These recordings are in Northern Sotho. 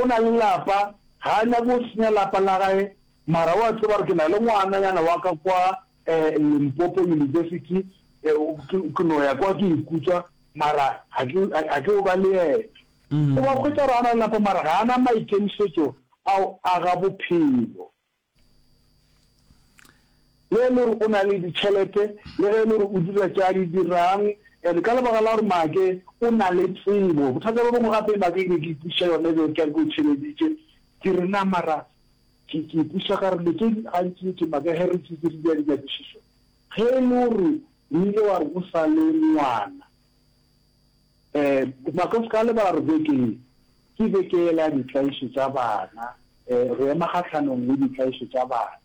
O na le lapa, ga a nyake go senya lapa la gae, mara o a tseba gore ke na le ngwananyana wa ka kwa Limpopo University, ke no ya kwa ke ikutswa, mara ga ke yo ba le yena. O ba hwetša gore a na le lapa mara ga a na maikemišetšo a go aga bophelo. Le ge e le gore o na le ditšhelete, le ge e le gore o dira tše a di dirang, and ka lebaka la gore Maake o na le tsebo, bothata bo bongwe gape Maake e be ke ipuša yona e be ke a ke o theleditše, ke re na mara ke ke ipuša ka re le tše gantši ke Maake ge re tše tše di dira dinyakišišo, ge e le gore o ile wa re o sa le ngwana, Ee, Makosikale ba re beke ye ke beke yela ditlaišo tša bana. Ee, re ema kgahlanong le ditlaišo tša bana.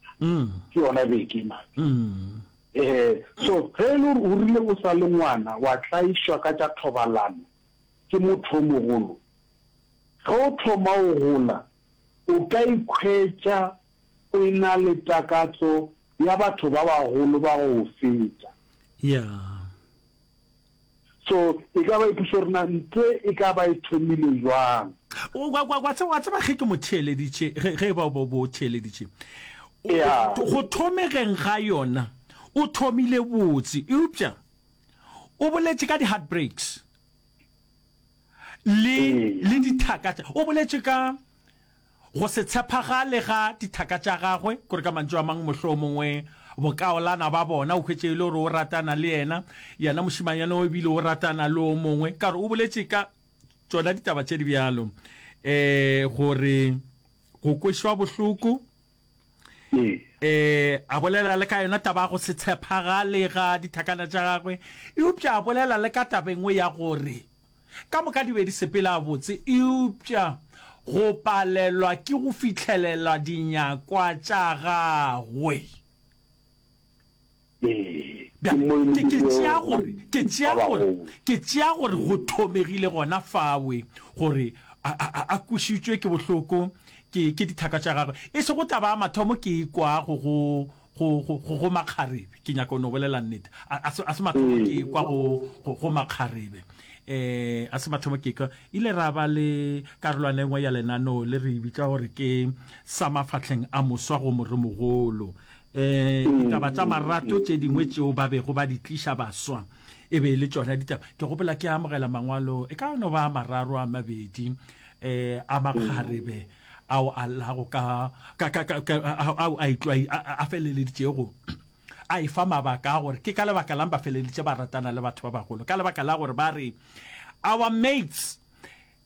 Ke yona beke mane. Ee, so ge e le gore o rile o sa le ngwana wa tlaišwa ka tša thobalano ke motho o mogolo, ge o thoma go gola o ka ikhwetša o e-na le takatso ya batho ba bagolo ba go o feta. Yeah. So e ka ba e pušo rena nte e ka ba e thomile jwang? Wa, wa, wa, wa tseba ge ke mo theeleditše, ge, ge ba bo, bo theeleditše, Yeah. go thomegeng ga yona o thomile botse, eupša o boletše ka di-heartbreaks le, Ee. le dithaka tša, o boletše ka. Go se tshepagale ga dithaka tša gagwe, kore ka mantšu a mang mohlomongwe bokaolana ba bona, o hwetše e le gore o ratana le yena, yena mošimanyana o ebile o ratana le o mongwe, ka gore o boletše ka tšona ditaba tše di bjalo, um gore go kwešwa bohloko. um a bolela le ka yona taba ya go se tshepagale ga dithakana tša gagwe eupša a bolela le ka taba engwe ya gore ka moka di be di sepela botse eupša go palelwa ke go fitlhelela dinyakwa tša gagwe. Ke tšea gore go thomegile gona fawe gore a kwešišitšwe ke bohloko ke dithaka tša gagwe. E sego taba ya mathomo ke e kwago go makgarebe, ke nyaka go no bolela nnete. A se mathomo ke e kwa go makgarebe. A se mathomo ke e kwa. Ile ra ba le karolwana e nngwe ya lenaneo le re e bitša gore ke Sa Mafahleng a Moswa go Moremogolo. Ditaba tša marato tše dingwe tšeo ba bego ba di tliša baswa e be e le tšona ditaba. Ke gopola ke amogela mangwalo e ka no ba a mararo a mabedi a makgarebe ao a llago ka ao a itlwai a feleleditšego a e fa mabaka a gore ke ka lebaka lang ba feleleditše ba ratana le batho ba bagolo ka lebaka la gore ba re our mates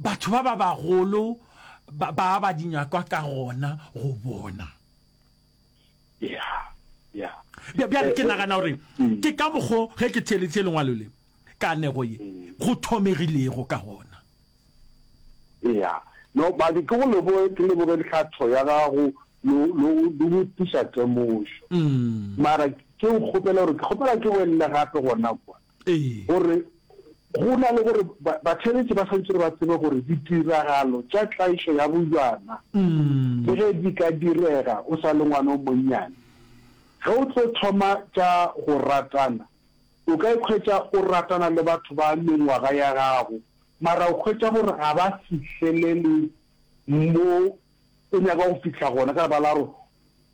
Batho ba ba bagolo ba ba aba di nyakwa ka gona go bona. Yeah, yeah. Bja, bjale ke nagana gore mm. ke ka mokgo ge ke theeleditše lengwalo le kanego ye mm. go thomegilego ka gona. Yeah. No, ba di ke go leboge ke leboge ditlhatho ya gago lo lo lo go tisa temošo. Mm. Mara ke o kgopela gore ke kgopela ke welle gape gona kwa. gore go na le gore batheeletši ba swanetše ba tsebe gore ditiragalo tša tlaišo ya bojana le ge di ka direga o sa le ngwana o monnyane, ge o tlo thoma tša go ratana, o ka ikhwetša o ratana le batho ba mengwaga ya gago mara o hwetša gore ga ba fihlelele mo o nyaka go fihla gona ka lebala la gore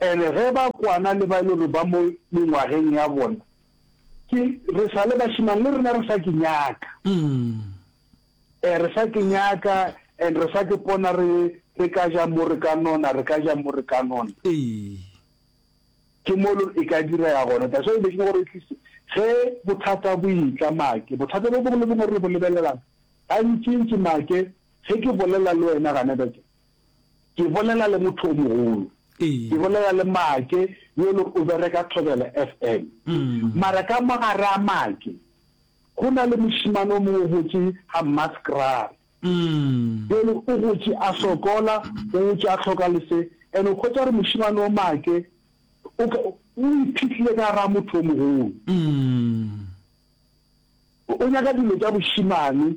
And ge ba kwana le ba e le gore ba mo mengwageng ya bona, ke re sa le bashimane le rena re sa ke nyaka. Eh re sa ke nyaka and re sa ke pona re re ka ja mo re ka nona, re ka ja mo re ka nona. Ee. Ke mo lo e ka dira ya gona. That's why be ke go re tlise ge bothata bo itla make. Bothata bo bongwe le bongwe re bo lebelelang. Gantsi ntsi make ge ke bolela le wena gane ba ke Ke bolela le motho o mogolo. Ke bolela le Make yo le o bereka Thobela FM. Mara ka mo gare a Make go na le mošimane o mongwe o gotše ga Mmaskrare. Jalo o gotše a sokola, o gotše a hloka lese. And o hwetša gore mošimane o Make o ka, o iphihlile ka gare a motho o mogolo. O nyaka dilo tša bošimane.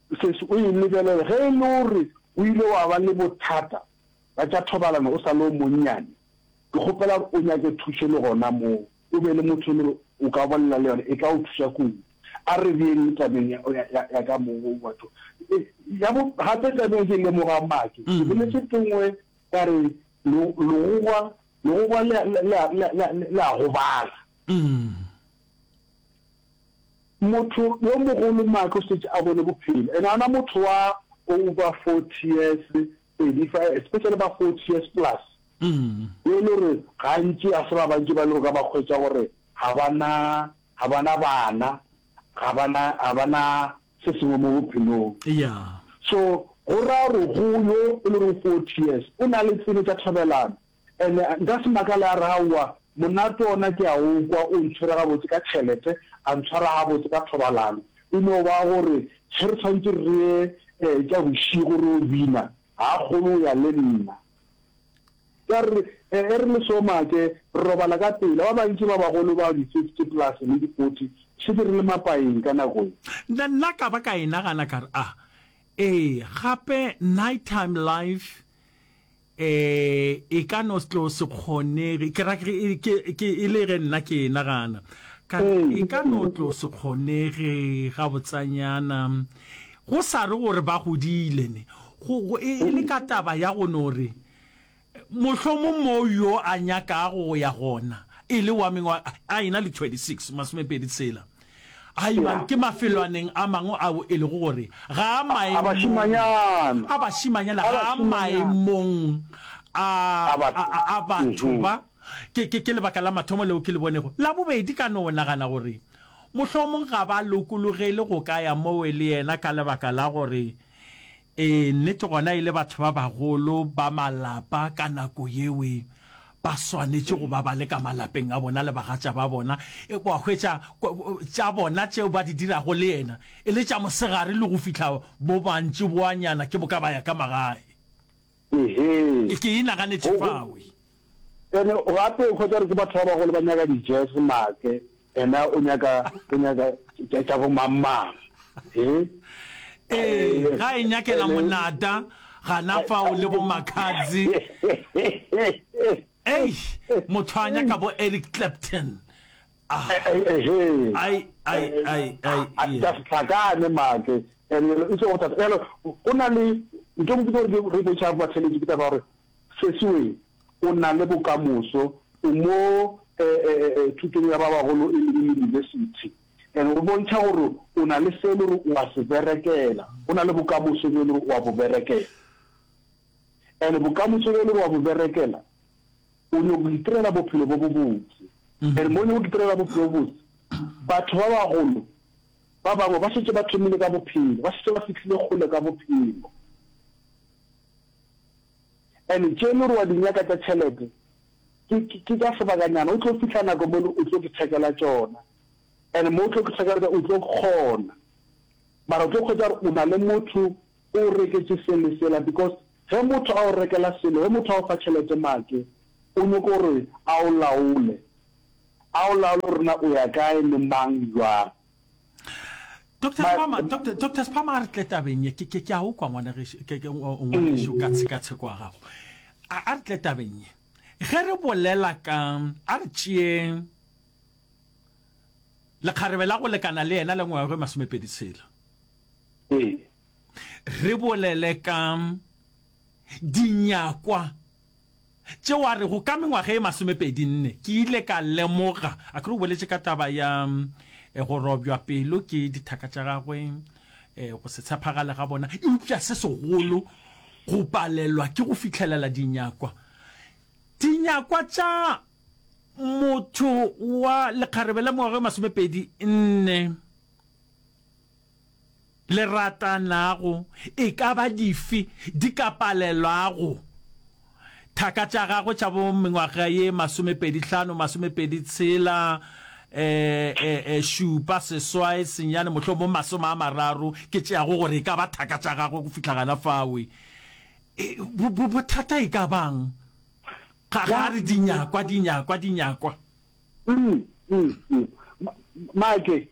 Sesi, o e lebelele. Ge e le gore o ile wa ba le bothata bja tša thobalano o sa le o monnyane, ke kgopela gore o nyake thušo le gona moo, o be le motho e le gore o ka bolela le yona, e tla go thuša kudu. A re beng le tabeng ya, ya, ya, ya ka moo, batho. E, ya bo, gape tabeng ke lemoga maake, ke boletše tengwe ka re, le, legogwa, legogwa le a, le a, le a, le a, le a gobala. Motho yo mogolo Mark o šetše a bone bophelo and ona motho wa over forty years pedi fa especially ba forty years plus be e le gore gantši ga se ba bantši ba e le gore ka ba hwetša gore ga ba na ga ba na bana ga ba na ga ba na se sengwe mo bophelong so go raya gore go yo e le gore forty years o na le tsebe tša thobelano And-e nka se makale a re, Aowa, monate ona ke a o kwa, o ntshwere gabotse ka tšhelete, a ntshwara gabotse ka thobalano. E no ba gore ge re tshwanetse re ye um tša bošego re yo bina, ga a kgone go ya le nna. Ka re, E, e re le soma ke, re robala ka pela. Ba bantši ba bagolo ba di-fifty plus le di-forty re šetše re le mapaeng ka nako ye. Nna, nna ka ba ka e nagana ka re, A, ee, gape night-time life Ee, e ka no tlo se kgonege, ke ra ke, ke, ke, e le ge nna ke nagana, ka re, e ka no tlo se kgonege gabotsanyana, go sa re gore ba godile ne, go, go, e, e le ka taba ya go no re, mohlomong moo yo a nyakago go ya gona, e le wa mengwa, a ena le 26, masomepedi tshela. A Ebang ke mafelwaneng a mangwe ao e lego gore ga a maemong a bašimanyana, ga a maemong a, a, a, a batho ba, ke, ke, ke lebaka la mathomo leo ke le bonego. La bobedi, ka no nagana gore mohlomong ga ba lokologele go ka ya moo le yena ka lebaka la gore Ee, nnete gona e le batho ba bagolo ba malapa ka nako yeo e ba swanetše go ba ba le ka malapeng a bona le bagatša ba bona, e ba hwetša tša bona tšeo ba di dirago le yena e le tša mosegare le go fihla bo mantšiboanyana ke boka ba ya ka magae. Ehee. E ke e naganetše fao. E. Ene gape o hwetša gore ke batho ba bagolo ba nyaka di-jazz make ena o nyaka, o nyaka tša, tša bo mang-mang. He. Ee, ga e nyakela monata, gana fao le bo Makhadzi. Eish, motho a nyaka bo Eric Clapton. hlakane matle and e tlo go thata yalo go na le nto go tlo re re botsa ba tshele ke taba gore se sewe o na le bokamoso o mo eh, eh, eh, eh thuto ya ba bagolo e le university and o bontsa gore o na le se le re o a se berekela o na le bokamoso le re o a bo berekela and bokamoso le re o a bo berekela o nyoko go itirela bophelo bo bo botse. And mo o nyoko go itirela bophelo bo botse, batho ba bagolo ba bangwe ba šetše ba thomile ka bophelo, ba šetše ba fihlile kgole ka bophelo. And tše le gore wa di nyaka tša tšhelete, ke tša sebakanyana, o tlo fihla nako mo o tlo ke thekela tšona. And mo o tlo ke thekela tšona, o tlo kgona. Mara o tlo kgwetša gore o na le motho, O o reketše se le sela because ge motho a o rekela selo, ge motho a o fa tšhelete make o nyoko gore a o laole. A o laole gore na o ya kae le mang jwang. Doctor But- Spama, Doctor, Doctor Spama a re tle tabeng ye. Ke ke ke a o kwa ngwana ge ke ke o- o ngwanešu ka tshekatsheko ya gago. A a re tle tabeng ye. Ge re bolela ka a re tšeeng lekgarebe la go lekana le yena le ngwaga e masomepedi tshela. Ee. Re bolele ka dinyakwa tše wa re go ka mengwaga e masomepedi nne ke ile ka lemoga a kere o boletše ka taba ya eh, go robjwa pelo ke dithaka tša gagwe eh, go se tshepagale ga bona eupša se segolo go palelwa ke go fitlhelela dinyakwa dinyakwa tša motho wa lekgarebe la mengwaga e masomepedi nne le ratanago e ka ba dife di ka palelwago thaka tša gagwe tša bo mengwaga ye masomepedi hlano, masomepedi tshela, šupa, seswae, senyane, mohlomong masome a mararo, ke tšeago gore e ka ba thaka tša gagwe go fihla gana fawe. Bothata e ka bang ga ga re dinyakwa, dinyakwa, dinyakwa? Make,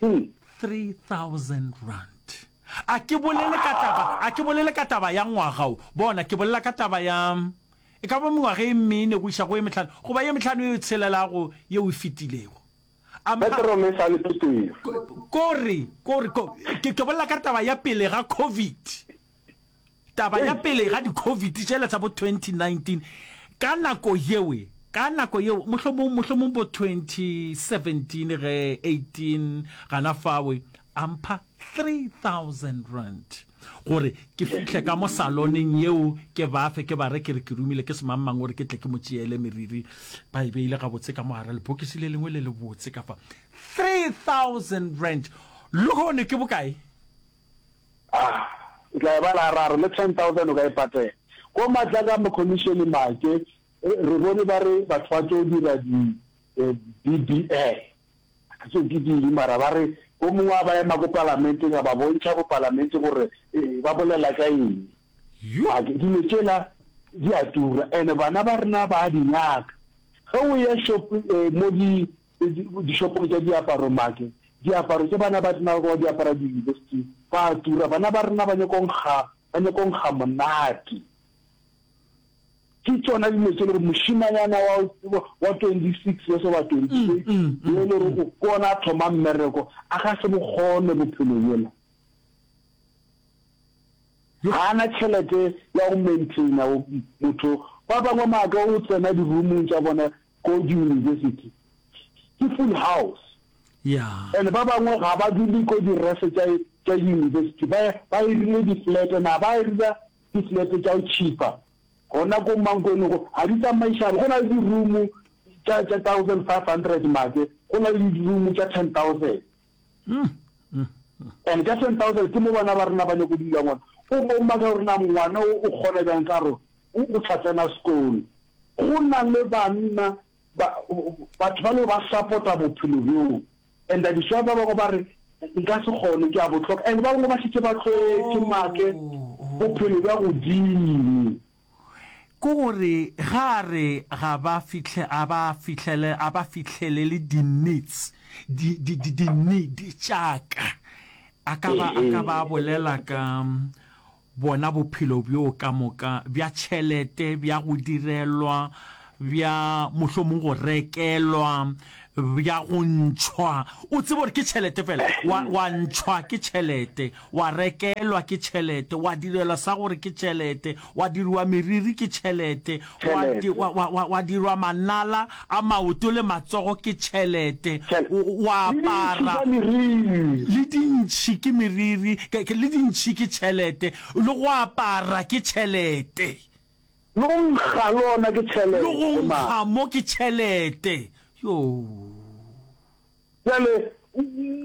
3000 A ke bolele ka taba, a ke bolele ka taba ya ngwaga wo, bona, ke bolela ka taba ya, e ka ba mengwaga e mene go iša go e mehlano, goba ye mehlano e tshelelago yeo e fetilego. A mpa, Petro le sa le Petero. ko, ko re, ko re, ko, ke, ke bolela ka taba ya pele ga COVID. Taba ya pele ga di-Covid tšela tsa bo 2019, ka nako yeo, ka nako yeo, mohlomong, mohlomong bo 2017 ge 18 gana fawe, a mpha R3,000 gore ke fihle ka mo saloneng yeo ke ba fe, ke ba re ke re ke romile ke semangmang gore ke tle ke mo tšeele meriri. Ba e beile gabotse ka mo gare lebokisi le lengwe le lebotse ka fa. R3,000! Lehono ke bokae? Ah, o tla e bala a re, a re le 10,000 o ka e patela. Ko matla ka mokhomišene Maake, re bone ba re batho ba tlo dira di BBL. Ga ke tsebe ke ding mara ba re o mongwe a ba ema ko palamenteng a ba bontšha bo palamente gore ba bolela ka eng. A ke dilo tšela di a tura and bana ba rena ba a di nyaka. Ge o ya shop mo di Dishopong tša diaparo make diaparo tše bana ba tsenago ba di apara diyunibesithing ba a tura. Bana ba rena ba nyaka go nkga, ba nyaka go nkga monate. Ke tšona dilo tše le gore mošimanyana wa wa twenty six years oba twenty eight yo le gore o ke ona a thoma mmereko a ga se bokgone bophelo bola. Ga ana tšhelete ya go maintainer motho ba bangwe make o tsena di-room-ong tša bona Kodu University ke full house Yeah. and ba bangwe ga ba dule ko di refe tša tša university ba ba irile di flat and ba irila di flat tša go cheaper gona ko mankweni go ga di tsamaisana go na le di room tša tša 1500 make go na le di room tša 10000 And ka 10,000 ke mo bana ba rena ba nyako dula ngwana. O bo maka gore na ngwana o o kgona bjang ka gore o o tla tsena sekolo. Go na le banna ba batho ba le ba support-a bophelo bjo. And that is why ba bangwe ba re nka se kgone ke a botlhoka. And ba bangwe ba šetše ba tlwaetše make bophelo bja godimo. ke gore ge a re ga ba fihle a ba fihlele a ba fihlelele di needs di di di di need tša ka a ka ba a ka ba bolela ka bona bophelo bjo ka moka bja tšhelete bja go direlwa bja mohlomong go rekelwa, bja go ntšhwa. O tseba gore ke tšhelete fela, wa, wa ntšhwa ke tšhelete, wa rekelwa ke tšhelete, wa direlwa sa gore ke tšhelete, wa diriwa meriri ke tšhelete, wa, di, wa, wa, wa, wa dirwa manala a maoto le matsogo ke tšhelete, wa apara le dintšhi ke meriri, le dintšhi ke tšhelete, le go apara ke tšhelete. Lo nkga lona ke tšhelete, Lo go Mma. nkga mo ke tšhelete, Yoo. Bjale,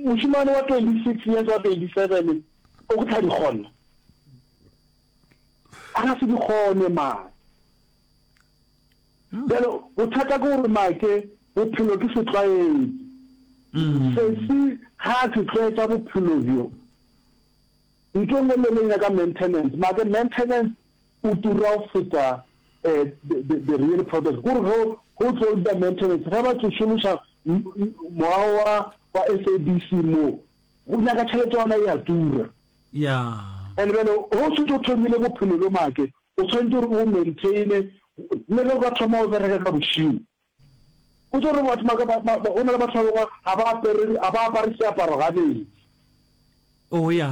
mošemane wa twenty-six years, wa twenty-seven, o go tla di kgona? A ka se di kgone, mma. Bjale, bothata ke gore, mma, ke bophelo ke setlwaedi. Sesi ga a se tlwaetša bophelo bjo. Nto e nngwe le e nngwe e nyaka maintenance, mma, ke maintenance o tura go feta the the real product gore ge go tlo dira maintenance ge ba tlo šomiša mowa wa wa SABC mo go nyaka tšhelete yona ya tura ya and bjale go se tlo thomile bophelo bjo make o tshwanetse gore o maintaine le ge o ka thoma o bereka ka bošimo O tšo re batho ba ka ba, ba, ba, go na le batho ba bangwe ga ba apere, ga ba apare seaparo gabedi. Oh, ya.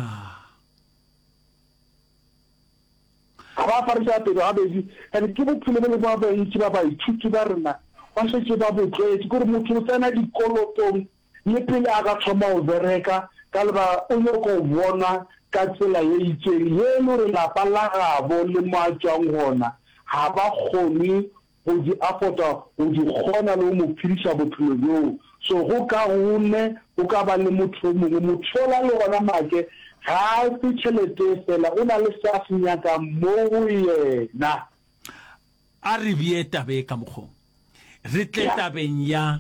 Ga ba apare seapero gabedi, and ke bophelo bo le ba bantši ba baithuti ba rena ba šetše ba bo tlwaetše, ke gore motho o tsena dikolotong le pele a ka thoma go bereka, ka lebaka o nyaka go bonwa ka tsela ye itšeng ye e le gore lapa la gabo le mo a tšwang gona ga ba kgone go di afota go di kgona le go mo phediša bophelo bjoo. So go kaone go ka ba le motho yo mongwe, motho yola le gona make ga a fe tšheletee fela, o na le se a se nyakang mo go yena. A re bee taba ye ka mokgong, re tle tabeng ya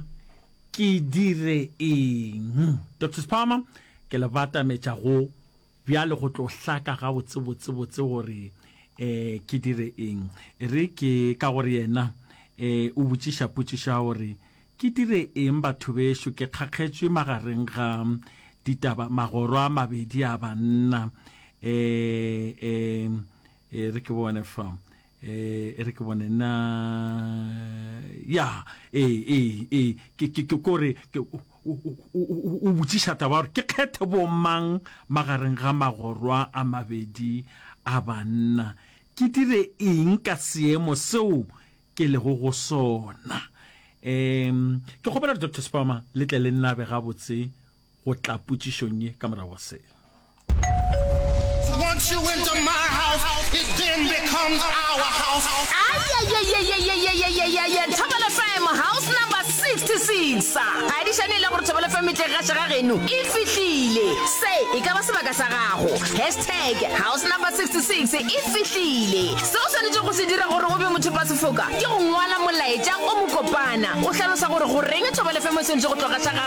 ke dire eng. Doctor Spalmer, ke le batametša go Bjale go tlo hlaka gabotsebotsebotse gore ke dire eng. E re ke ka gore yena o botšiša potšišo ya gore, Ke dire eng batho bešo? Ke kgakgetšwe magareng ga ditaba, magoro a mabedi a banna. E re ke bone fa. eh e re ke bone na ya ee ee ee ke ke ke kore o botšiša taba gore ke kgethe bo mang magareng ga magorwa a mabedi a banna ke dire eng ka seemo seo ke lego go sona um ke kgopela doctor spama le tle le nnabe gabotse go tla potšišong ye ka morago ga seo Once you into my house, it then becomes our house. thobelo fm house number 66 adišane e le gore thobelo fm tle ga šega geno e fihlile se e ka ba sebaka sa gago hashtag house number 66 e fihlile se o swanetše go se dira gore o be motho ba sefoka ke go ngwala molaetša o mokopana o hlalosa gore goreng thobelo fm o swanetše go tloga sa gago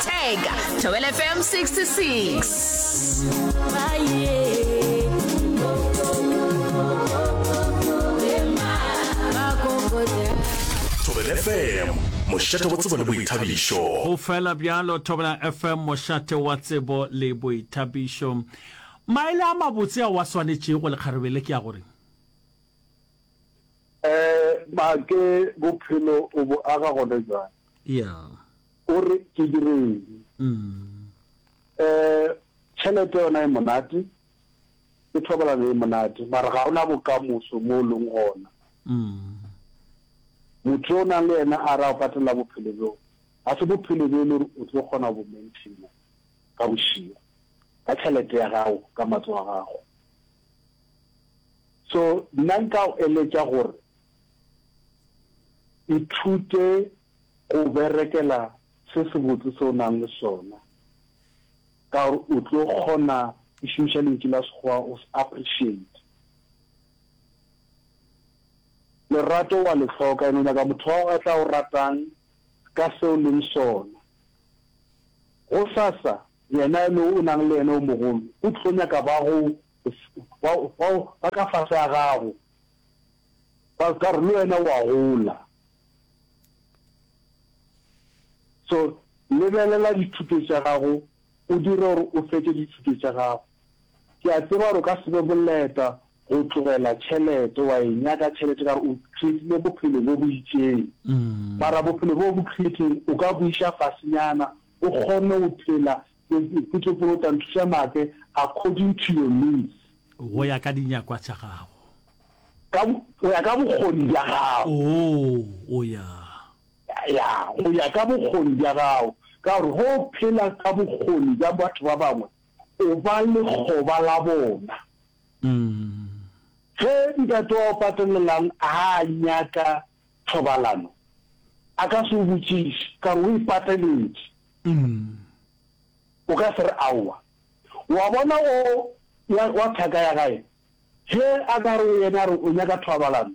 Tag, Thobela FM 66. Thobela FM, mošate wa tsebo le boithabišo. Go fela bjalo Thobela FM, mošate wa tsebo le boithabišo. Maele a mabotse a wa swanetšego lekgarebe ke a gore um make bophelo o bo aga gone jang yeah O re ke dire eng? Ee, tšhelete yona e monate, le thobalano e monate, mara ga gona bokamoso mo o leng gona. Motho yo o nang le yena a re a go patelela bophelo bjo, ga se bophelo bjo e le gore o tlo kgona go bo maintaina ka bošego ka tšhelete ya gago, ka matso a gago. So nna nka go eletša gore ithute. Go berekela se sebotse se o nang le sona ka gore o tlo kgona, ke šomiša lentšu la Sekgowa, go se appreciate. Lerato wa le hloka and o nyaka motho wa gago a tla o ratang ka se o leng sona. Gosasa yena e le o nang le yena o mogolo o tlo nyaka ba go, ba ka fase ga gago. Pastor le wena wa gola. So lebelela dithuto tša gago o dire gore o fetše dithuto tša gago. Ke a tseba gore o ka se be boleta go tlogela tšhelete, wa e nyaka tšhelete ka gore o creatile bophelo bo bo itšeng. Mara bophelo bo bo createng o ka bo iša fasenyana o kgone go phela Ke tšopo o tla nthuša make according to your needs. Go ya ka dinyakwa tša gago. Ka, go ya ka bokgoni bja gago. Oh, o ya. Ya, go ya ka bokgoni bja gago. Ka gore ge o phela ka bokgoni bja batho ba bangwe, o ba lekgoba la bona. Mm. Ge ntate wa go patelelang a nyaka thobalano, a ka se o botšiše, ka gore o e pateletše. Umm. O ka se re aowa. Wa bona o wa, wa thaka ya gae? Ge a ka re go yena a re o nyaka thoabalano,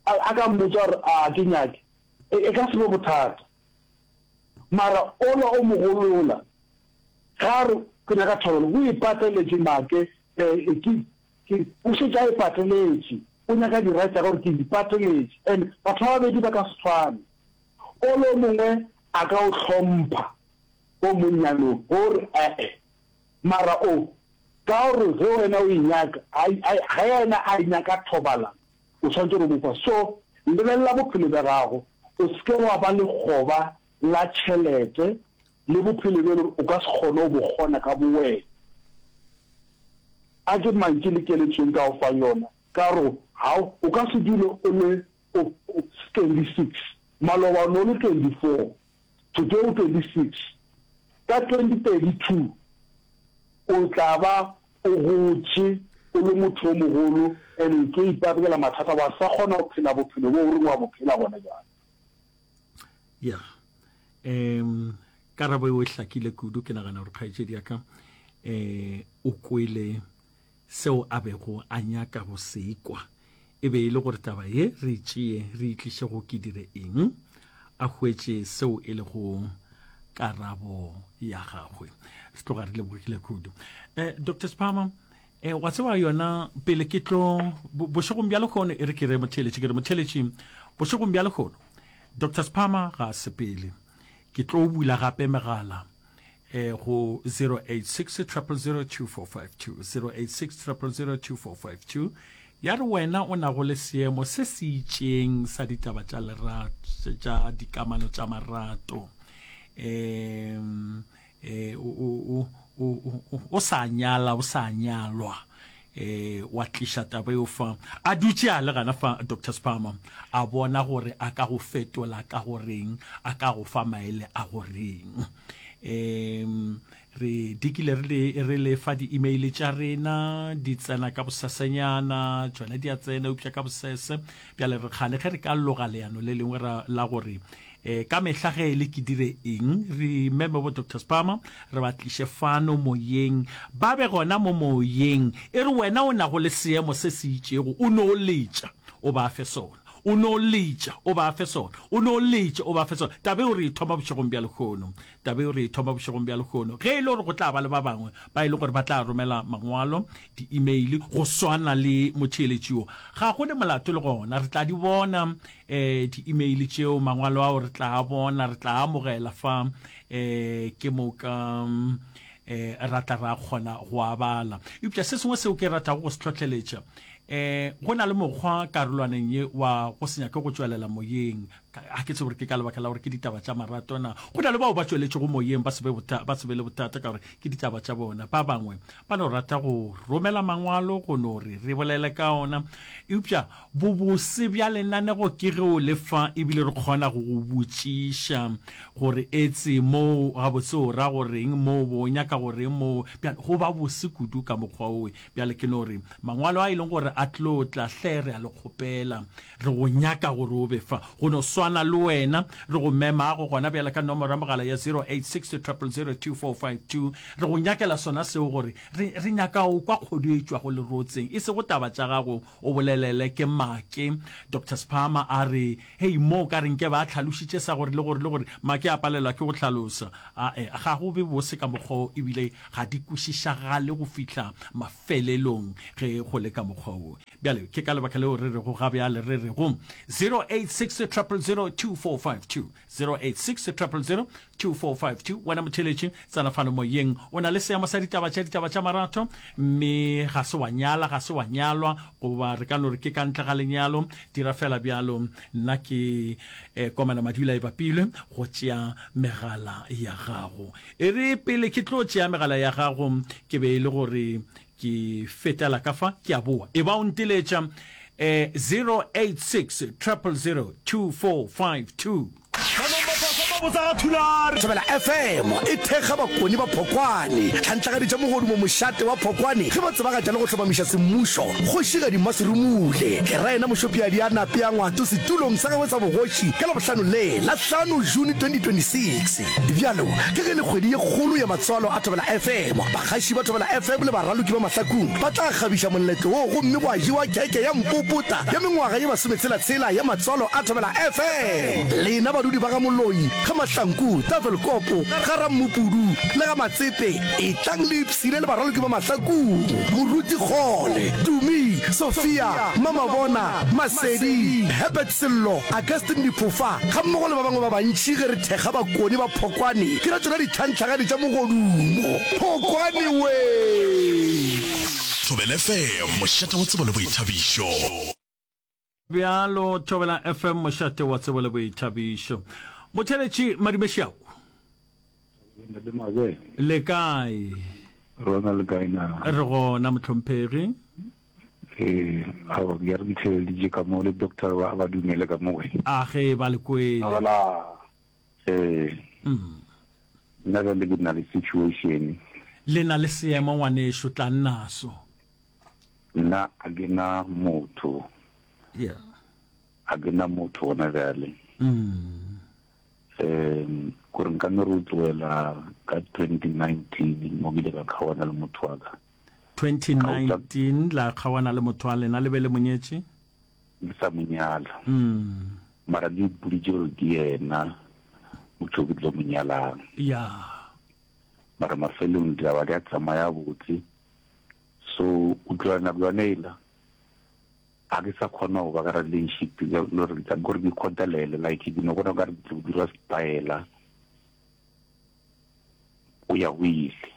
a, a ka mmotsa gore a ke nyake, e, e ka se be bothata. Mara ola o mogolo yola, ge a re ke nyaka thoabalano, o ipateletše make, e, e, ke, ke, o šetše a ipateletše. O nyaka dira tša gagwe gore ke ipateletše. And batho ba babedi ba ka se tshwane. O lo mongwe a ka o hlompha o monnyane o re ee, mara o ka o re ge wena o e nyaka, ge yena a e nyaka thobalano, o swanetše go mo fa. So lebelela bophelo bja gago, o se ke wa ba lekgoba la tšhelete le bophelo bjo e le gore o ka se kgone go bo kgona ka bowena. A ke mantši le keletšo e nka go fang yona, ka gore o ka se dule o le 26 maloba o ne o le 24 today o 26 ka 2032 o tla ba o gotše o le motho o mogolo and o tlo iparekela mathata wa sa kgona go phela bophelo bo o reng wa bo phela gona bjale ya um karabo eo e hlakile kudu ke nagana gore kgaetšedi ya ka um o kwele Seo a bego a nyaka go se kwa e be e le gore taba ye re e tšee re e tliše go Ke Dire Eng? A hwetše seo e lego karabo ya gagwe. Re tloga re lebogile kudu. Eh, Doctor Sphama, eh, wa tseba yona pele ke tlo bo- bošegong bja lehono, e re ke re motheeletši, ke re motheeletši bošegong bja lehono. Doctor Sphama ga a sepele. Ke tlo bula gape megala eh, go 086 000 2452, 086 000 2452, ya re wena o nago le seemo se se itšeng sa ditaba tša lerato tša dikamano tša marato um eh, o, o, o, o, o, o sa nyala o sa nyalwa Ee, wa tliša taba eo fa. A dutše a le gana fa, Doctor Spalmer, a bona gore a ka go fetola ka go reng, a ka go fa maele a go reng. Ee, re dikile re le, re le fa di-email tša rena, di tsena ka bosesanyana, tšona di a tsena, eupša ka bosese. Bjale re kgane ge re ka loga leano le lengwe ra, la gore E, ka mehla ge e le ke dire eng, re meme bo Doctor Spama, re ba tliše fano moyeng, ba be gona mo moyeng. E re wena o nago le seemo se se itšego, o no letša, o ba fe sona, o no letša, o ba fe sona, o no letša, o ba fe sona. Taba eo re e thoma bošegong bja lehono. Taba yeo re e thoma bošegong bja lehono. Ge e le gore go tla ba le ba bangwe ba e lego gore ba tla romela mangwalo, di-email, go swana le motheeletši yo, ga go ne molato le gona. Re tla di bona um di-email tšeo, mangwalo ao re tla a bona, re tla a amogela fa um ke moka um ra tla ra kgona go a bala. Eupša se sengwe seo ke ratago go se hlohleletša, um go na le mokgwa karolwaneng ye wa go se nyake go tšwelela moyeng. Ga ke tsebe gore ke ka lebaka la gore ke ditaba tša marato na. Go na le bao ba tšweletšego moyeng ba se be le bothata ka gore ke ditaba tša bona. Ba bangwe ba no rata go romela mangwalo go no re re bolele ka ona. Eupša bobose bja lenanego ke ge o le fa e bile re kgona go go botšiša gore etse moo gabotse o ra go reng moo bo nyaka go reng moo. Bjale go ba bose kudu ka mokgwa owe. Bjale ke no re mangwalo a e leng gore a tlo tla hle re a le kgopela Re go nyaka gore o be fa, go no swana le wena. Re go memago gona bjale ka nomoro ya mogala ya 0862000252. Re go nyakela sona seo gore re, re nyaka go kwa kgodu e tšwago lerotseng, e sego taba tša gago, o bolelele ke Make. Doctor Sphama a re, Hei, mo o ka re nke ba hlalošitše sa gore le gore le gore. Make a palelwa ke go hlalosa. A-e, ga go be bose ka mokgwa wo, e bile ga di kwešišagale go fihla mafelelong ge go le ka mokgwa wo. Bjale, ke ka lebaka leo re rego ga bjale re rego 0860002452, 0860002452, wena motheletši, tsena fano moyeng. O na le seemo sa ditaba tša ditaba tša marato, mme ga se wa nyala, ga se wa nyalwa, goba re ka no re ke ka ntle ga lenyalo, dira feela bjalo. Nna ke eh, Komana Madula e bapilwe go tšea megala ya gago. E re pele ke tlo tšea megala ya gago, ke be e le gore Ke fetela ka fa, ke a boa. E ba o nteletša, eh, 086 000 2452. Thobela FM e thekga bakoni ba Phokwane, tlhantlagadi tša mogodumo mošate wa Phokwane ge ba tsebagatša le go hlomamiša semmušo kgošigadi Mmaserumule Geraena Mošopiadi a nape a ngwato setulong sa gagwe sa bogoši ka Labohlano le la hlano June 2026. Bjalo ka ge le kgwedi ye kgolo ya matswalo a Thobela FM, bagaši ba Thobela FM le baraloki ba mahlakung ba tla kgabiša moletlo wo gomme gwa jewa kheke ya mpopota ya mengwaga ye masometshela-tshela ya matswalo a Thobela FM. Lena badudi ba ga Moloi, ga Mahlanku, Tafelkopo, ga Rammopudu le ga Matsepe etlang le ipshine le baraloki ba mahlakung, Moruti Kgole, Tumi, Sophia, Mmamabona, Masedi, Herbert, Sello, Augustine Diphofa gammogo le ba bangwe ba bantši ge re thekga bakoni ba Phokwane ke ra tšona ditlhantlhagadi tša mogodumo. Phokwane wee! Thobela FM, mošate wa tsebo le boithabišo. Bjalo, Thobela FM, mošate wa tsebo le boithabišo. Motheeletši Madume Šiaku. Ntate Mabele. Le kae? Rona le kae na? Re gona motlhomphegi. Eh, awa ke ya re ditheleditše ka mo le doctor ba ba dumele ka mo we. A ge ba le kwele. Wala. Eh. Mm. Nna ka le ke na le situation. Le na le seemo ngwanešu tla nnaso. Nna a ke na motho. Yeah. A ke na motho gona bjale. Mm. Um, gore nka no re o tloela ka 2019 mo bile ka kgawana le motho wa ka. 2019 la kgawana le motho wa lena le be le monyetše? Ke sa monyala. Mm. Mara le ipoditše gore ke yena motho ke tlo monyalang. Ya. Mara mafelong di aba di a tsamaya botse. So o tloela nako yone ela. Ga ke sa kgona go ba ka relationship ya lore ka gore ke kgotalele like ke no gona ka re ke tlo dira setaela o ya go ile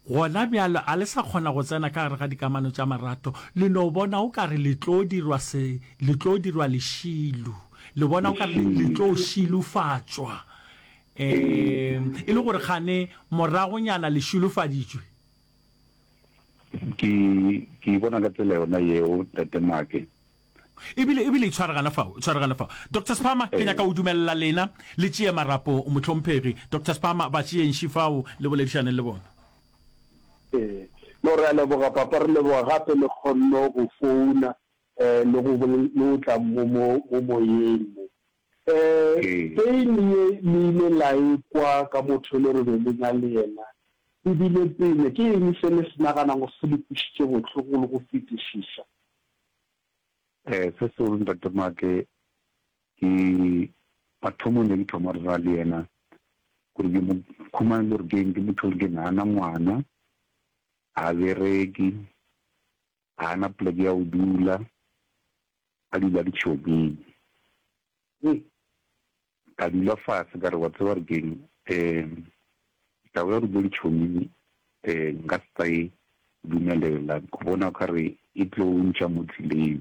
gona bjalo a le sa kgona go tsena ka gare ga dikamano tša marato le no bona o ka re le tlo dirwa se le tlo dirwa lešilu le bona o ka re le tlo šilufatšwa um e le gore gane moragonyana le šilofaditšwe Ke, ke e bona ka tsela yona yeo, Tate Maake. Ebile, ebile itshware gana fao, itshware gana fao. Doctor Sphama, ke nyaka go dumelela lena le tšee marapo, mohlomphegi. Doctor Sphama, ba tšeeng še fao, le boledišaneng le bona. Ee. No, re a leboga, Papa, re leboga gape le kgonno go founa, le go, le go tla mo, mo, mo moyeng mo. Peine ye le ile la e kwa ka motho yo le re be le na le yena, e bile peine. Ke eng se le se naganago gore se le kwešitše bohloko le go fetišiša? Se segolo, Ntate Mark, ke mathomong ne ke thoma re ra le yena gore ke mo khumane le gore ke eng. Ke motho o re ke na na ngwana, ga bereke, ga a na poleke ya go dula, a dula ditšhokeng. Ee, ka dula fase ka re wa tseba re keng, um taba ya go dula ditšhokeng um nka se tla e dumelela, ke bona o ka re e tlo ntša mo tseleng.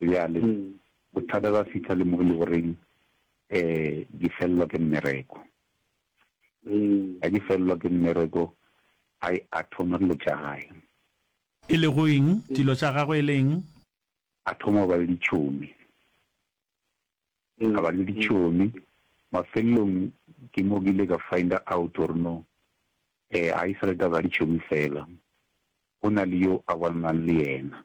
Bjale, bothata ba fihla le mo e le goreng um ke fellwa ke mmereko. Ga ke fellwa ke mmereko, I a thoma dilo tša gae. E lego eng? Dilo tša gagwe e le eng? A thoma go ba le ditšhomi. A ba le ditšhomi. Mafelelong ke mo ke ile ka find-a out gore no um ga e sa le taba ya ditšhomi fela, go na le yo a bonalang le yena.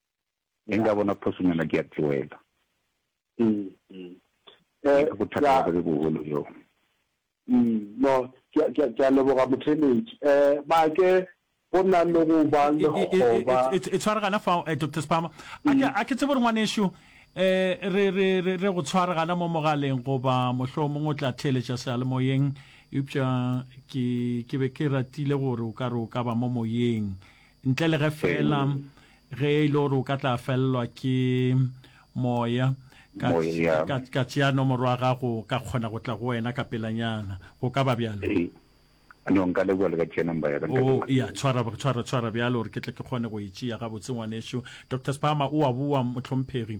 ge nka bona phoso nna ke a tloela ka bothata ba be bogolo yo no ke a leboga motheletši um make go na le go ba lekgoba e tshwaregana fa dr spama a ke tsebe gore ngwanešu um re re re go tshwaregana mo mogaleng goba mohloo mongwe o tla theeletša sealemoyeng eupša ke be ke ratile gore o ka re o ka ba mo moyeng Ntle le ge feela ge e le gore o ka tla fellwa ke Moya, ka, ka, ka tšea nomoro ya gago, ka kgona go tla go wena ka pelanyana. Go ka ba bjalo? No, nka leboga le ka tšea number ya ka. Nka Oh, leboga. ya, tshwara, tshwara, tshwara bjalo gore ke tle ke kgone go e tšea gabotse, ngwanešu. Doctor Spama, o a boa, mohlomphegi.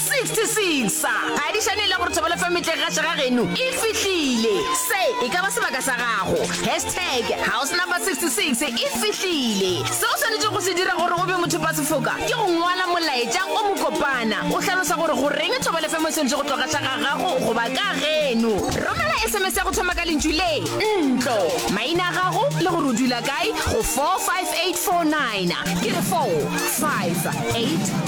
66 sa phadišane le gore thobeletso ya metlegagaša ga geno e fihlile. Se e ka ba sebaka sa gago. Hashtag House Number 66 e fihlile. Se o swanetšego go se dira gore o be mothopasefoka ke go ngwala molaetša o mokopana o hlalosa gore goreng thobeletso e swanetše go tloga xa ga gago goba ka geno. Romela sms ya go thoma ka lentšu le, ntlo, maina a gago le gore o dula kae go 45849. Ke re 45849.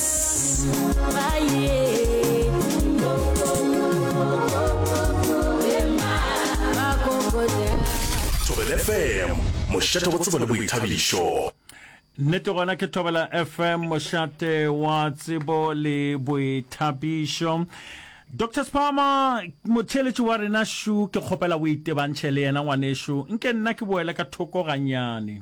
Thobela FM, mošate wa tsebo le boithabišo. Nnete gona ke Thobela FM, mošate wa tsebo le boithabišo. Dr Spama, motheeletši wa rena šu, ke kgopela o itebantšhe le yena ngwanešu, nke nna ke boele ka thoko ganyane.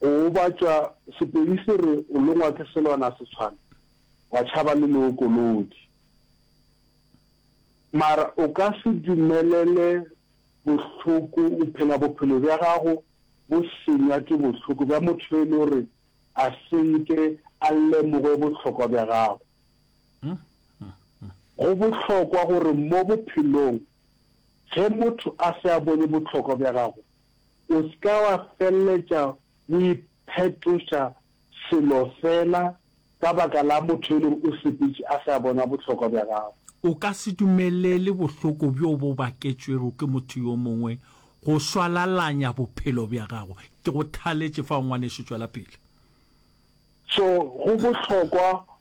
Go gobatšwa, Sepedi se re o longwa ke selwana se tshwana wa tšhaba le leokolodi. Mara o ka se dumelele bohloko o phela bophelo bja gago bo senywa ke bohloko bja motho yo e le gore a se nke a lemoge bohlokwa bja gago. Go bohlokwa gore mo bophelong ge motho a se a bone bohlokwa bja gago O se ka wa feleletša o iphetoša selo feela ka baka la motho yo e lego o sepetše a sa bona bohlokwa bja gago. O ka se dumelele bohloko bjo bo baketšwego ke motho yo mongwe go swalalanya bophelo bja gago. Ke go thaletše fao, ngwanešu. Tšwela pele. So, go bohlokwa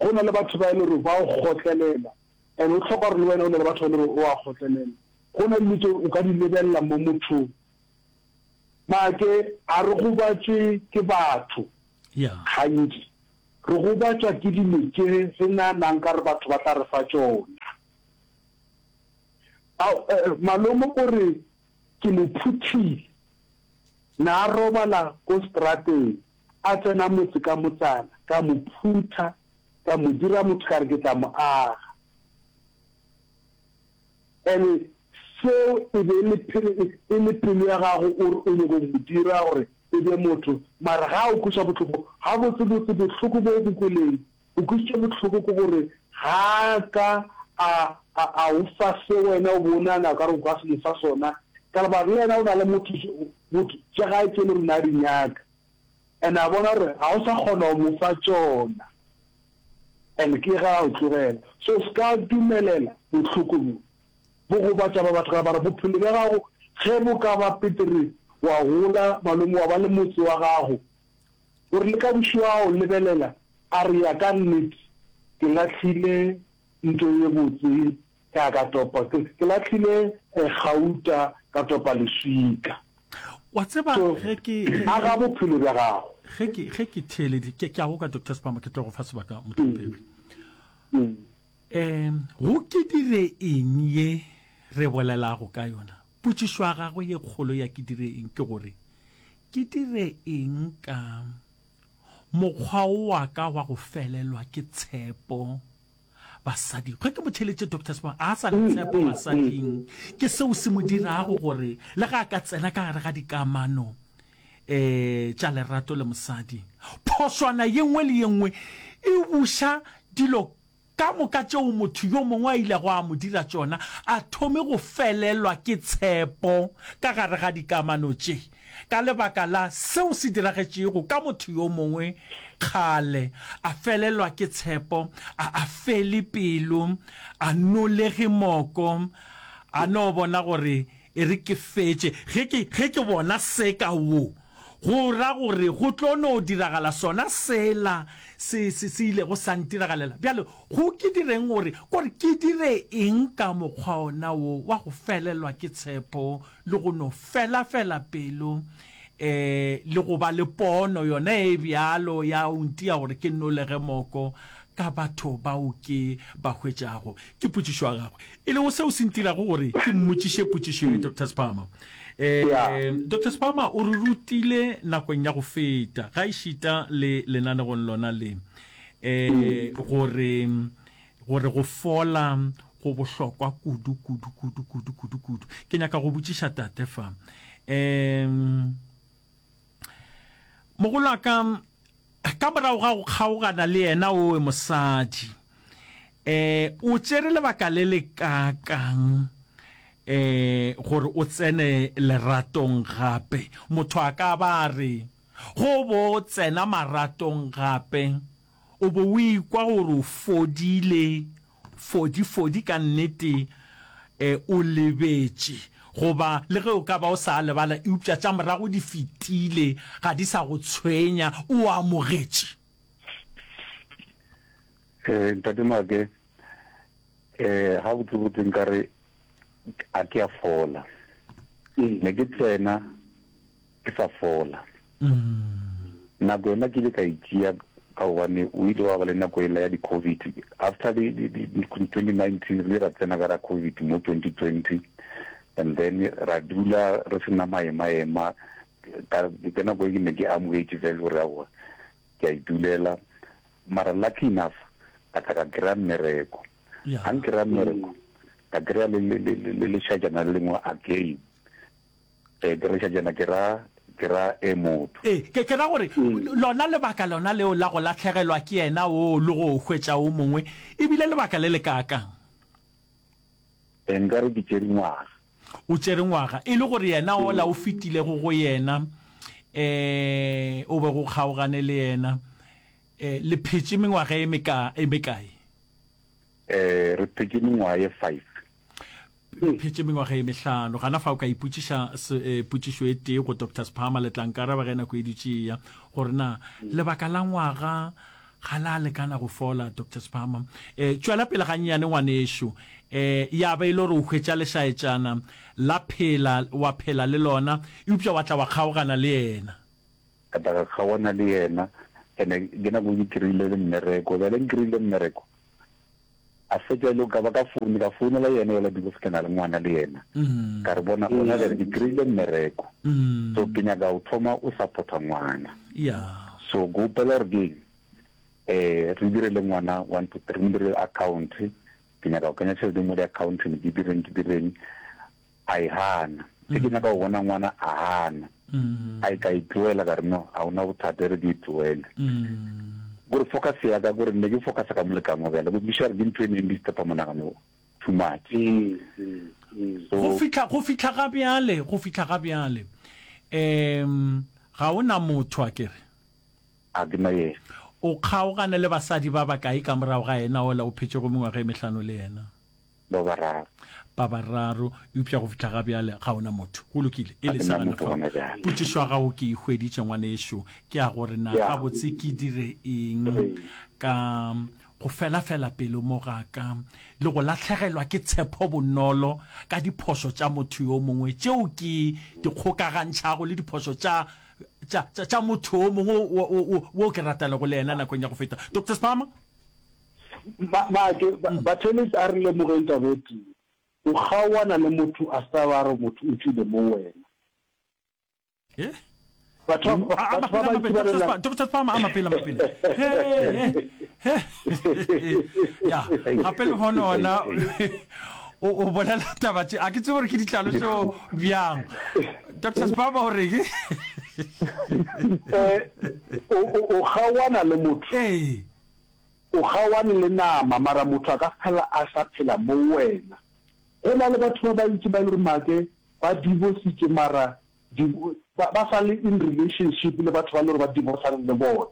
Go na le batho ba e le gore ba o kgotlelela and o tlhoka gore le wena o na le batho ba e le gore o a kgotlelela. Go na le dilo tse o ka di lebelela mo mothong. Maake a re gobatswe ke batho gantsi, re gobatswa ke dilo tse re naanang ka re batho ba tla re fa tsona. Malomo o re Ke le phuthile. Na robala ko strateng, a tsena motse ka motsana, ka mo phutha, ka mo dira motho ka re ke tla mo aga. Ene seo e be e le pelo ya gago o re o nyoko go mo dira gore e be motho, mara ga o kweša bohloko, gabotsebotse bohloko bo o bo kweleng O kwešitše bohloko ke gore ga a ka a, a, a go fa se wena o be o nagana o ka re o ka se mo fa sona, ka gore ba re yena o na le motho, motho, tša gae tše e le gore o ne a di nyaka, and a bona gore ga o sa kgona go mo fa tšona, and ke ge a o tlogela. So o se ka dumelela bohloko bjo bo gobatša ba batho, ka gore bophelo bja gago ge bo ka ba petere, wa gola, malome, wa ba le motse wa gago, O rile, Ka bošego a go lebelela, a re, Ya ka nnete, ke lahlile nto ye botse ya ka topa, ke, ke lahlile gauta ka topa leswika. Wa tseba, So, ge ke, ge, aga bophelo bja gago. ge ke, ge ke theeleditše, ke, ke a go ka, Doctor Spama, ke tlo go fa sebaka, mohlomphegi. Mm. Um, go ke dire eng ye re bolelago ka yona? Potšišo ya gagwe ye kgolo ya ke dire eng ke gore, Ke dire eng ka mokgwa wa ka wa go felelwa ke tshepo basading? Ge ke mo theeletše, Doctor Sibongwe ga a sa na tshepo basading. Ke seo se mo dirago gore le ge a ka tsena ka gare ga dikamano um tša lerato le mosadi, phošwana ye nngwe le ye nngwe e buša dilo Ka moka tšeo motho yo mongwe a ilego a mo dira tšona, a thome go felelwa ke tshepo ka gare ga dikamano tše ka lebaka la seo se diragetšego ka motho yo mongwe kgale. A felelwa ke tshepo, a a fele pelo, a nolege moko, a no bona gore e re ke fetše ge ke, ge ke bona seka wo. Go ra gore go tlo no diragala sona sela se, se, se ilego sa ntiragalela. Bjale, go ke direng gore, gore ke dire eng ka mokgwa ona wo wa go felelwa ke tshepo le go no fela fela pelo, um, le go ba le pono yona e bjalo ya go ntia gore ke nolege moko ka batho bao ke ba hwetšago? Ke potšišo ya gagwe. E lego seo se ntirago gore ke mmotšiše potšišo ye, Doctor Sphama. Doctor Sphama o re rutile nakong ya go feta, gaešita le lenanegong lona le, gore gore go fola go bohlokwa kudu, kudu, kudu, kudu, kudu, kudu. Ke nyaka go botšiša Tate fa, mogolwaka, Ka morago ga go kgaogana le yena, owe mosadi, eh, o tšere lebaka le le kaakang, eh, gore o tsene leratong gape? Motho a ka ba a re, Go bo tsena maratong gape, o bo o ikwa gore o fodile Fodi, Fodi, ka nnete e, o lebetše. Goba, le ge o ka ba o sa a lebala, eupša tša morago di fetile, ga di sa go tshwenya, o a amogetše. Ee, Ntate Maake, e, gabotsebotse nkare a ke a fola. Ne ke tsena ke sa fola. Nako yona ke ile ka e tšea ka gobane o ile wa ba le nako ela ya di-covid after twenty nineteen re ile ra tsena ka ra covid mo twenty twenty and then ra dula re sena maemaema ka nako e ke ne ke amogetše fela gore aowa ke a idulela mara lucky enough ka tla ka kry-a mmereko ga nkry-a mmereko ka kry-a le lešajana le lengwe again Ee, ke reša tšena, ke ra, ke ra, e motho. Ee, ke, ke ra gore, lona lebaka lona leo la go lahlegelwa ke yena woo le go o hwetša o mongwe, e bile lebaka le lekaakang? Ee, nka re ke tšere ngwaga. O tšere ngwaga, e le gore yena ola o fetilego go yena, ee, o bego o kgaogane le yena, ee, le phetše mengwaga e meka, e mekae? Ee, re phetše mengwaga ye five. Re phetše mengwaga ye mehlano. Gana fa o ka ipotšiša se, eh, potšišo e tee go Doctor Sphama, le tla nkaraba ge nako e dutše e ya, gore na lebaka la ngwaga ga la lekana go fola, Doctor Sphama. Eh, tšwela pele gannyane, ngwanešu. Eh, ya ba e le gore o hwetša lešaetšana la phela, wa phela le lona, eupša wa tla wa kgaogana le yena. Ka tla ka kgaogana le yena, ene ke nako ke kry-ile le mmereko. Bjale nkry-ile mmereko, a fetša e le ka ba ka foune ka founela yena yola divorce ke na le ngwana le yena ka re bona gona jale ke kry-ile mmereko so ke nyaka o thoma o supporta ngwana so ke opela gore keng um re dire le ngwana one to three mo dire account ke nyaka go kenya tšhelete mo di-accounteng ke direng ke direng a e hana. Ge ke nyaka go bona ngwana a hana, a e ka e tloela ka re no, a ona bothata e re ke e tloele. Gore focus ya ka gore ne ke focus ka molekane wa bjale go tliša re ke ntho e neng di stepa monagano too much. Go fihla go fihla ga bjale go fihla ga bjale um ga o na motho a ke re? A ke na ye. O kgaogane le basadi ba bakae ka morago ga yena ola o phetšego mengwaga e mehlano le yena? ba bararo. Ba bararo, eupša go fihla ga bjale ga o na motho. Go lokile, e lesa gana fao. Potšišo ya gago ke e hweditše, ngwanešu. Ke ya go re na gabotse ke dire eng ka go felafela pelo mo ga ka le go lahlegelwa ke tshepo bonolo ka diphošo tša motho yo mongwe tšeo ke di kgokagantšhago le diphošo tša tša tša motho yo mongwe wo ke ratalego le yena nakong ya go feta. Doctor Spama? Maake, mm. Bathelis a re lemogeng taba e tee, o kgaoana le motho a sa ba re motho o tlile mo wena. Eh? Batho mm. ba ba ba itsebalela. Dr. Palmer a mapela mapela. Ya, gape le bona ona o o bolela taba tse a ke tsebe gore ke ditlalo tseo bjang. Dr. Spaba o reke? Eh, o o kgaoana le motho. Eh. O kgaoane le nama, mara motho a ka se hlala a sa phela mo wena. Go na le batho ba bantši ba e le gore make ba divositše mara ba ba sa le in relationship le batho ba le gore ba divosane le bona.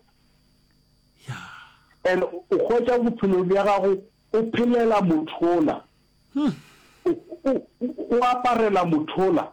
And o hwetša bophelo bja gago o phelela mothola, o aparela mothola.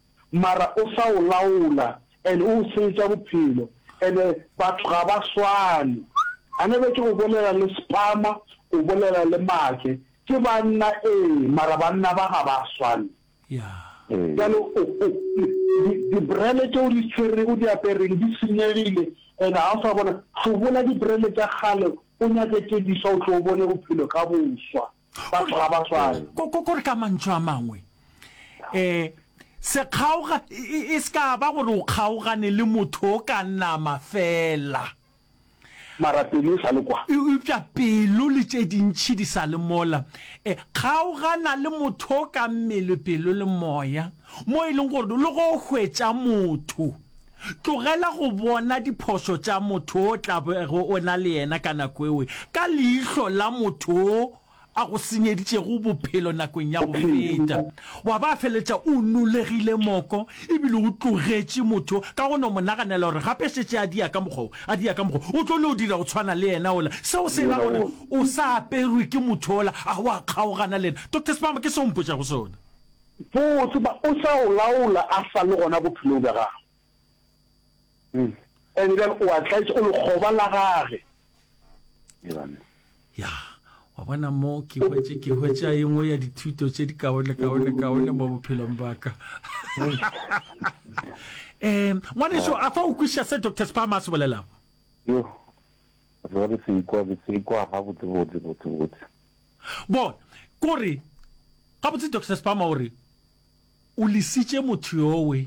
mara o sa o laola and o o senyetša bophelo and batho ga ba swane a ne be ke go bolela le spama o bolela le make ke banna ee mara banna ba ga ba swane bjalo di brele tšeo di tshwerego di apereng di senyegile and ga o sa bona hlobola di brele tša kgale o nyake tše diswa o tlo o bone bophelo ka boswa. batho ga ba swane ko ko ko re ka mantšu a mangwe eh se kgaoga e- e e se ka ba gore o kgaogane le motho o ka nama fela mara pelo e sa le kwa eupša pelo le tše dintšhi di sa le mola e kgaogana le motho o ka mmele pelo le moya mo e leng gore le go hwetša motho Tlogela go bona diphošo tša motho o tla bego o na le yena ka nako eo ka leihlo la motho yo a go senyeditšego bophelo nakong ya go feta, wa ba feletša o nolegile moko ebile o tlogetše motho ka go no mo naganela gore gape šetše a dia ka mokgwa wo, a dia ka mokgwa wo. O tlo no dira go tshwana le yena ola. Seo se ra gore o sa aperwe ke motho ola a wa kgaogana le yena. Doctor Sibambo, ke seo o mpotšago sona. Boo, tseba, O sa o laola a sa le gona bophelong bja gagwe. Mm. Ene bjale o a tlaetša, o lekgoba la Gage. Amen. Ya, wa bona mo ke hwetše, ke hwetša e nngwe ya dithuto tše di kaone, kaone, kaone mo bophelong ba ka. Eh, ngwaneso, a fa o kwešiša se Dr. Spam a se bolelago? Yo, re se ikwa, re se ikwa gabotse, botse, botse, botse. Bona, ko re, gabotse Doctor Spama o re, O lesitše motho yowe,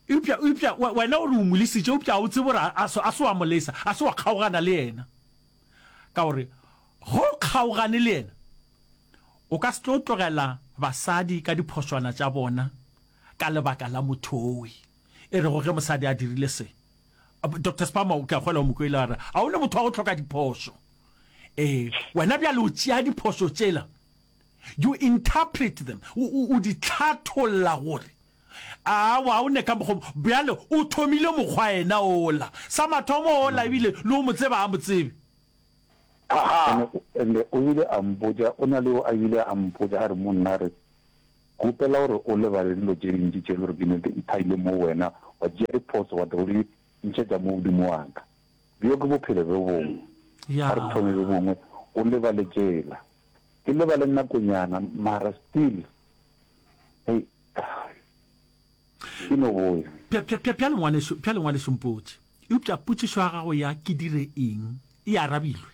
eupša, eupša we, wena o re o mo lesitše, eupša ga o tsebe gore a, a se wa mo lesa, a se wa kgaogana le yena. Ka gore, ge o kgaogane le yena, o ka se tlo tlogela basadi ka diphošwana tša bona ka lebaka la motho yowe. E rego ge mosadi a dirile se. Doctor Spama, ke a kgwela o mo kwele a re, a o le motho wa go hloka diphoso. Eh, wena bjale o tšea diphoso tšela, you interpret them, o, o, o di tlhatholla gore awa o ne ka mokgo bjale o thomile mokgwa ena ola sa mathomo ola ebile le o mo tseba a mo tsebe Aha. Ene o- ene o ile a mpotša o na le o a ile a mpotša a re monna a re Kgopela gore o lebale dilo tše dintši tše e le gore di nete di thaile mo wena, wa tšea diphoso wa tla o di ntšhetša mo godimo wa ka. Bjo ke bophelo bjo bongwe. A re thome bjo bongwe, o lebale tšela. Ke lebale nakonyana, mara still, hei, ke no boya. Bjale ngwaneso, bjale ngwaneso Mpotše, eupša potšišo ya gago ya ke dire eng e arabilwe.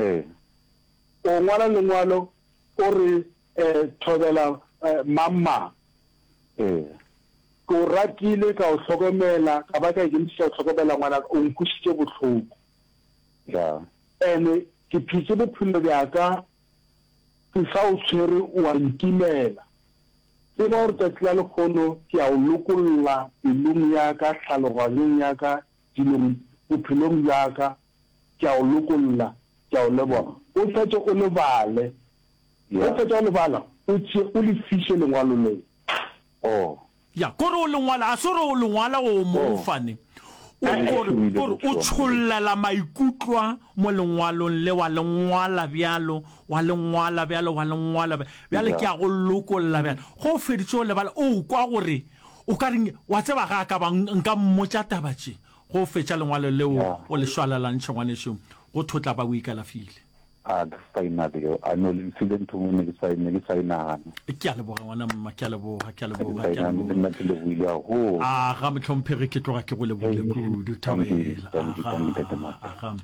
Ee. O ngwala lengwalo o re thobela mang-mang. Ee. Ke o ratile, ka o hlokomela, ka ba ka ikemišetša go hlokomela ngwanaka, o nkwišitše bohloko. Ya. Ene ke phetše bophelo bjaka ke sa o tshwere, o a nkimela. Tseba gore tšatši la lekgono ke a o lokolla pelong yaka, tlhaloganyong yaka, dilong, bophelong bjaka. Ke a o lokolla. Ke a o leboga. O fetše o le bale. Ge o fetša go le bala, o tšee o le fiše lengwalo leo. Oh. Ya, ke gore o le ngwala. Ga se gore o le ngwala go o mong fane. O, ke gore, ke gore o tšhollela maikutlwa mo lengwalong le, wa le ngwala bjalo, wa le ngwala bjalo, wa le ngwala bjalo. Bjale ke a go lokolla bjale. Ge o feditše go le bala, o kwa gore, o ka re, wa tseba, ga a ka ba nka mmotša taba tše. Go fetša lengwalo leo o le šwalalantšhe, ngwanešu, go thotla ba o ikalafile. A ka saena bjoo? A no le mfile ntho mo ne ke sa, ne ke sa e nagana. Ke a leboga, ngwana mma, ke a leboga, ke a leboga, ke a leboga. Le nna ke lebohile haholo. Aga, mohlomphegi, ke tloga ke go lebohile kudu, Thabela. Aga, aga.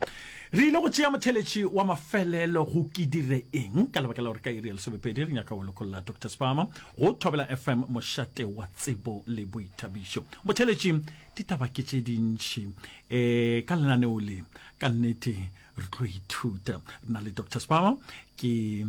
Re ile go tšea motheletši wa mafelelo go Ke Dire Eng? ka lebaka la gore ka iri ya lesomepedi re nyaka go lokolla Doctor Sparmer go Thobela FM, mošate wa tsebo le boithabišo. Motheletši ditaba ke tše dintši um eh, ka lenaneo le ka nnete re tlo ithuta re na le dr spama ke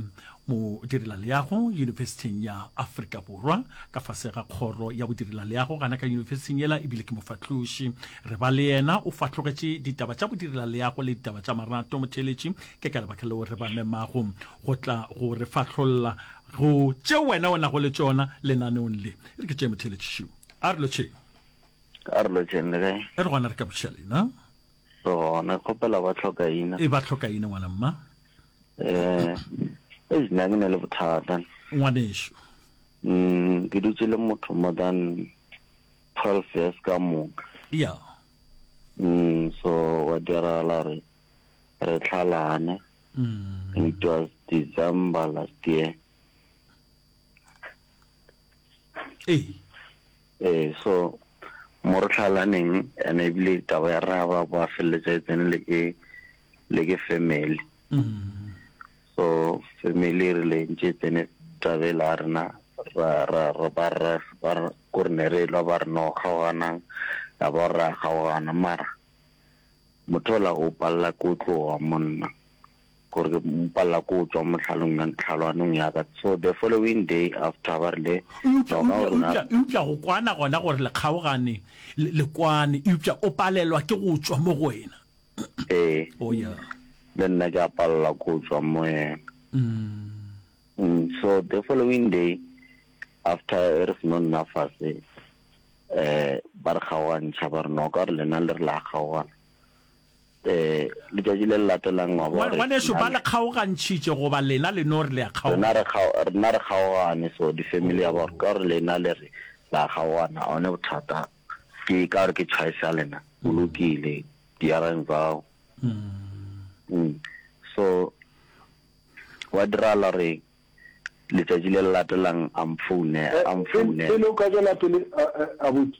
modirela leago yunibesithing ya aforika borwa ka fase ga kgoro ya bodirela leago gana ka yunibesithing ela ebile ke mofatloši re ba le yena o fatlogetše ditaba tša bodirela leago le ditaba tša marato motheletši ke ka lebaka leo re ba memago go tla go re fatlholla go tše wena o nago le tšona lenaneong le re ke tšee motheletši šo a re lotšheng a re lotšeng le kae e re gona re ka bošiša leina re gona kgopela ba tlhokaina e ba tlhokaina ngwana mma um e nna ke ne le bothata ngwaneso um ke dutse le motho more than twelve years ka moka ya um so wa diragala re re tlhalane mm. it was december last year ee Ee, so mo re tlhalaneng and ebile taba ya rra ba ba feleletsa e tsene le ke le ke family. So family re le ntse tsene tabe la rena ra ra ra ba ra ba go ne re lwa ba re no kgaogana ya ba ra kgaogana mara motho la o palla ko tloga monna. gore ke mo palela ko tšwa mohlalong ya ntlhalwanong ya ka so the following day after ba rile noka o rona eupša go kwana gona gore le kgaogane le kwane eupša o palelwa ke go tšwa mo go wena ee oh yeah le nna ke a palela ko tšwa mo yena mm. mm so the following day after e re seno nna fase eh ba re kgaogantšha ba re noka re lena le re la kgaogana Ee, letšatši le le latelang wa bona gore. Ngwanešu, ba le kgaogantšhitše, goba lena le no re le a kgaogana? Rena re kgaogane, so di family ya ba ka gore lena le re le a kgaogana, one bothata ke ka gore ke choice ya lena, go lokile, dirang bao. So gwa diragala gore letšatši le le latelang a mphounela. Pele o ka tšwela pele, abuti.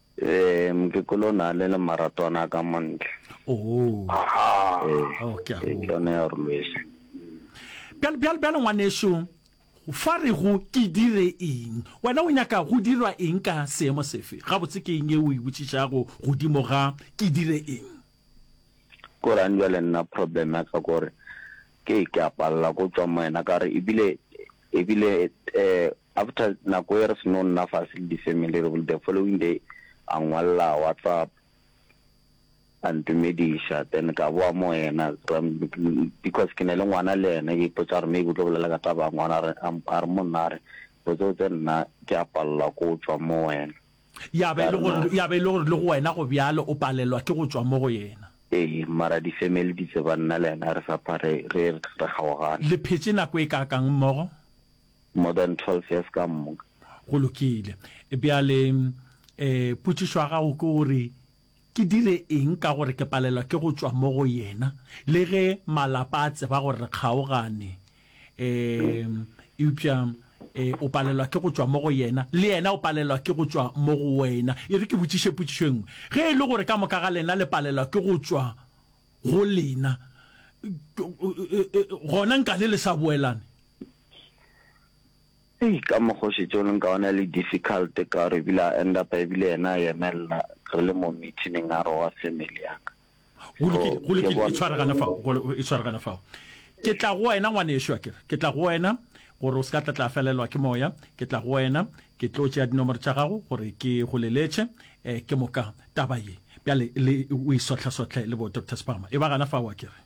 Ee, mokekolo o ne a le le maratwana a ka mo ntle. Oh. Aha. Ee, Oh, ke a ee, go. ke yone ya gore lwese. Bjale, bjale, bjale ngwanešu, fa re go ke dire eng? Wena o nyaka go dirwa eng ka seemo sefe? Gabotse ke eng e o e botšišago godimo ga ke dire eng? Korang jwale nna problem ya ka gore ke ke a palela ko tswa mo wena ka re ebile E bile eh, after nako e re seno nna fase le di-family, re bile the following day a ngwalela WhatsApp a ntumediša, then ka boa mo ena because ke ne le ngwana le ene, ke ipotsa gore maybe o tlo bolela ka taba ya ngwana, a re mo nna, a re botse botse nna ke a palela ko tšwa mo wena. Ya ba e le gore, ya ba e le gore le go wena go bjalo, o palelwa ke go tšwa mo go yena. Ee, mara di-family di tseba nna le yena re sa pha, re, re, re kgaogane. Le phetše nako e kaakang mmogo? More than twelve years ka moka. Go lokile. Bjale, um, potšišo ya gago ke gore, Ke dire eng ka gore ke palelwa ke go tšwa mo go yena le ge malapa a tseba gore re kgaogane? Um Eupša um o palelwa ke go tšwa mo go yena, le yena o palelwa ke go tšwa mo go wena. E re ke botšiše potšišo e nngwe. Ge e le gore ka moka ga lena le palelwa ke go tšwa go lena, gona nka le le sa boelane? Hei ka mokgo šetše o leng ka ona le difficult ka gore ebile a end up ebile yena a yemella re le mo meeting a re wa family ya ka. Go lokile, go lokile e tshware gana fao, e tshware gana fao. Ke tla go wena ngwanešu akere, ke tla go wena gore o se ka tla tla felelwa ke moya, ke tla go wena ke tlo tšea dinomoro tša gago gore ke go leletše ke moka taba ye. Bjale le o e sohlasohle le bo Doctor Sibama e ba gana fao akere.